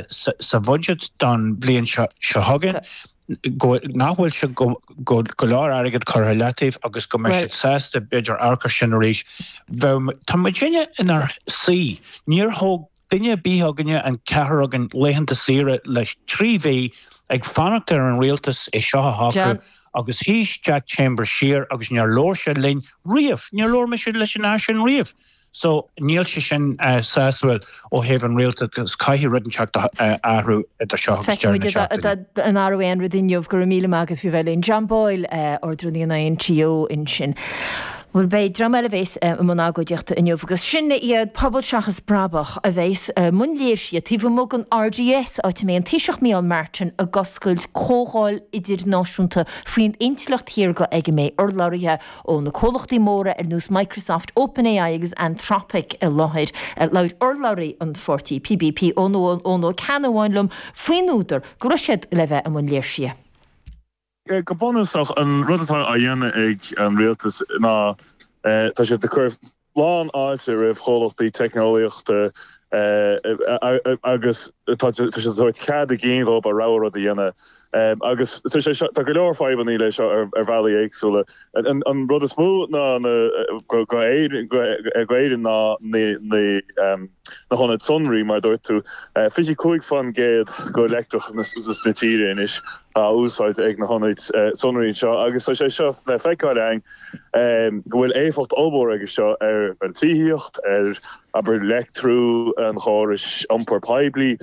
sa bhuiséad don bhliain seo chugainn nach bhfuil sé go leor airgead curtha i leataobh agus go mbeidh siad sásta b'fhéidir amharc ar sin arís bhuel tá muidinne inár suí níor thóg duine ar bith againn an ceathrar againn laethanta saoire le trí mhí ag fanacht ar an rialtas é seo a shocrú agus shuigh Jack Chambers siar agus níor labhair sé linn riamh níor labhair mise leis an fhear sin riamh. So, níl sé sin sásúil ó thaobh an rialtas, caithfidh rud inteacht athrú idir seo agus deireadh na seachtaine. Feicfimid an athróidh aon rud inniu, go raibh míle maith agat as a bheith linn. John Boyle, Ardrúnaí an INTO ansin. Bhuel, beidh dream eile a bhéas i mbun agóidíochta inniu agus sin iad Pobal Seachas Brabach a bhéas i mbun léirsithe taobh amuigh den RDS, áit a mbeidh an Taoiseach Micheál Martin ag oscailt comhdháil idirnáisiúnta faoin intleacht shaorga ag a mbeidh urlabhraithe ó na comhlachtaí móra ar nós Microsoft, OpenAI agus Anthropic i láthair. Labhair urlabhraí an pháirtí PBP Eoin Ó Ceannabháin liom faoin údar go raibh siad le bheith i mbun léirsithe. Go bunúsach, an rud atá á dhéanamh ag an rialtas ná tá siad ag cur lán fháilte roimh chomhlachtaí teicneolaíochta agus tá siad ag tabhairt cead a gcinn dhóibh a rogha rud a dhéanamh agus tá go leor fadhbanna leis seo ar bhealaí éagsúla. An rud is mó ná go gcuireann na na hionaid sonraí mar a dúirt tú, 25 fán gcéad de leictreachas na tíre anois á úsáid ag na hionaid sonraí anseo agus tá sé seo le feiceáil againn. go bhfuil éifeacht ollmhór aige seo ar an tithíocht, ar, abair, leictriú an chórais iompair poiblí,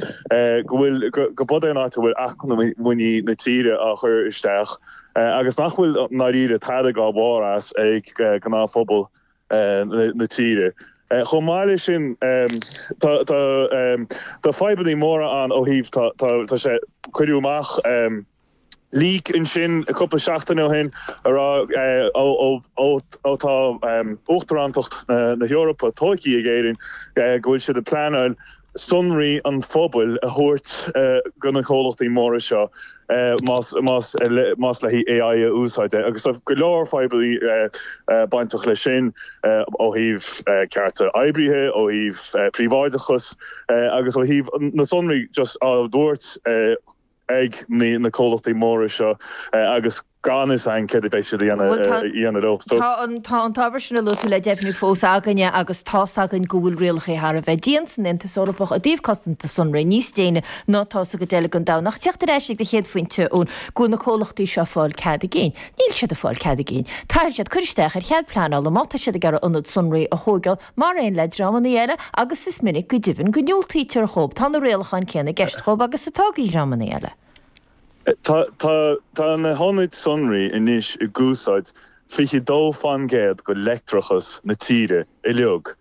go bhfuil, gurb in é an áit a bhfuil acmhainní na tíre á chur isteach agus nach bhfuil ndáiríre tairbhe an-mhór as ag gnáthphobal na tíre. Chomh maith leis sin, tá fadhbanna móra ann ó thaobh, tá sé, cuireadh amach, Leak ansin cúpla seachtain ó shin a rá ó tá Uachtarántacht na hEorpa tógtha ag Éirinn go bhfuil siad ag pleanáil sonraí an phobail a thabhairt go na comhlachtaí móra seo más le haghaidh AI a úsáid agus tá go leor fadhbanna bainteach leis sin ó thaobh cearta oibrithe, ó thaobh príobháideachas agus ó thaobh na sonraí just a thabhairt. ag na comhlachtaí móra seo agus gan fhios againn céard a bheidh siad a dhéanamh leo. Tá an t-ábhar sin a luaigh tú le deimhniú fós againn agus tá's againn go bhfuil rialacha thar a bheith dian san Aontas Eorpach i dtaobh cosanta sonraí, níos déine ná atá sa gcuid eile den domhan. Ach teacht ar ais ag do chéad phointe Eoin go bhfuil na comhlachtaí seo ag fáil cead a gcinn. Níl siad ag fáil cead a gcinn. Caithfidh siad cur isteach ar chead pleanála má tá siad ag iarraidh ionad sonraí a thóigeáil, Mar aon le dreamanna eile agus is minic go deimhin go ndiúltaítear dhóib, tá na rialacháin céanna i gceist dhóib agus atá ag dhreamanna eile. Tá na hionaid sonraí anois ag úsáid 22 faoin gcéad go leictreachas na tíre uiliug.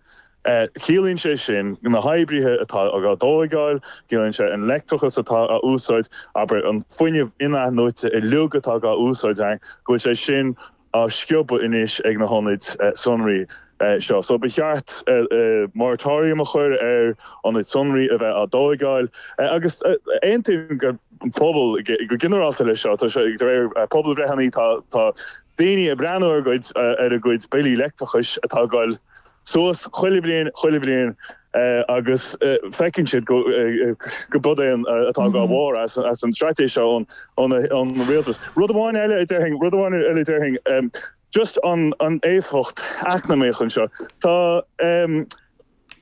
Ciallaíonn sé sin na hoibreacha atá á dtóigáil, ciallaíonn sé an leictreachas atá á úsáid, abair, an fuinneamh in-athnuaite uiliug atá á úsáid againn, go bhfuil sé sin á sciobadh anois ag na hionaid sonraí seo. So ba cheart moratorium a chur ar ionaid sonraí a bheith á dtóigeáil agus aontaíonn an pobal go ginearálta leis seo. Tá sé de réir pobalbhreitheanna, tá tá daoine ag breathnú ar a gcuid ar a gcuid billí leictreachais atá ag goil suas chuile bhliain chuile bhliain. agus feiceann siad gurb iad an t-aon atógáil mhór as an straitéis seo ón rialtas. Rud amháin eile a déarfainn, rud amháin eile a déarfainn, just an éifeacht eacnamaíoch anseo. Tá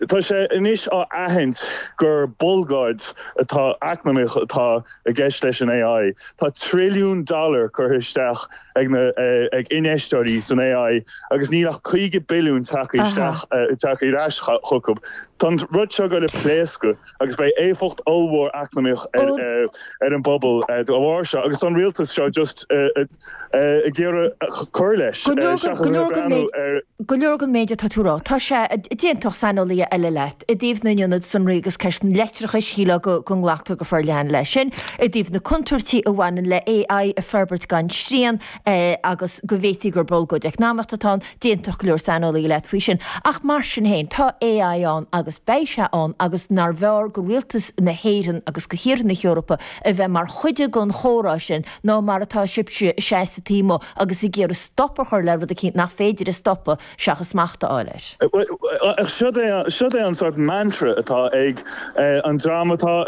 tá sé anois á aithint gur bolgáid atá eacnamaíoch atá i gceist leis an AI. Tá trilliún dollar curtha isteach ag na, ag infheisteoirí san AI agus níl ach 50 billiún tagtha isteach, tagtha ar ais chucu. Tá an rud seo ag goil a pléascadh agus beidh éifeacht ollmhór eacnamaíoch ar, ar an bpobal de bharr seo agus tá an rialtas seo just, ag iarraidh cur leis, seachas ag breathnú ar. Go leor den méid atá tú a rá, tá sé, d'aontódh saineolaithe eile leat, i dtaobh na n-ionad sonraí agus ceist an leictreachais, shílfeá go nglactar leis go forleathan leis sin, i dtaobh na contúirtí a bhaineann le AI a fhorbairt gan srian agus go bhféadfaí gur bolgóid eacnamaíoch atá ann, d'aontódh go leor saineolaithe leat faoi sin. Ach mar sin féin, tá AI ann agus beidh sé ann agus nárbh fhearr go rialtas na hÉireann agus go thíortha na hEorpa a bheith mar chuid den chomhrá sin nó mar atá sibhse, ag seasamh taobh amuigh agus ag iarraidh stop a chur le rud eicínt nach féidir a stopadh seachas smacht a fháil air. Siod é an sórt mantra atá ag an dream atá i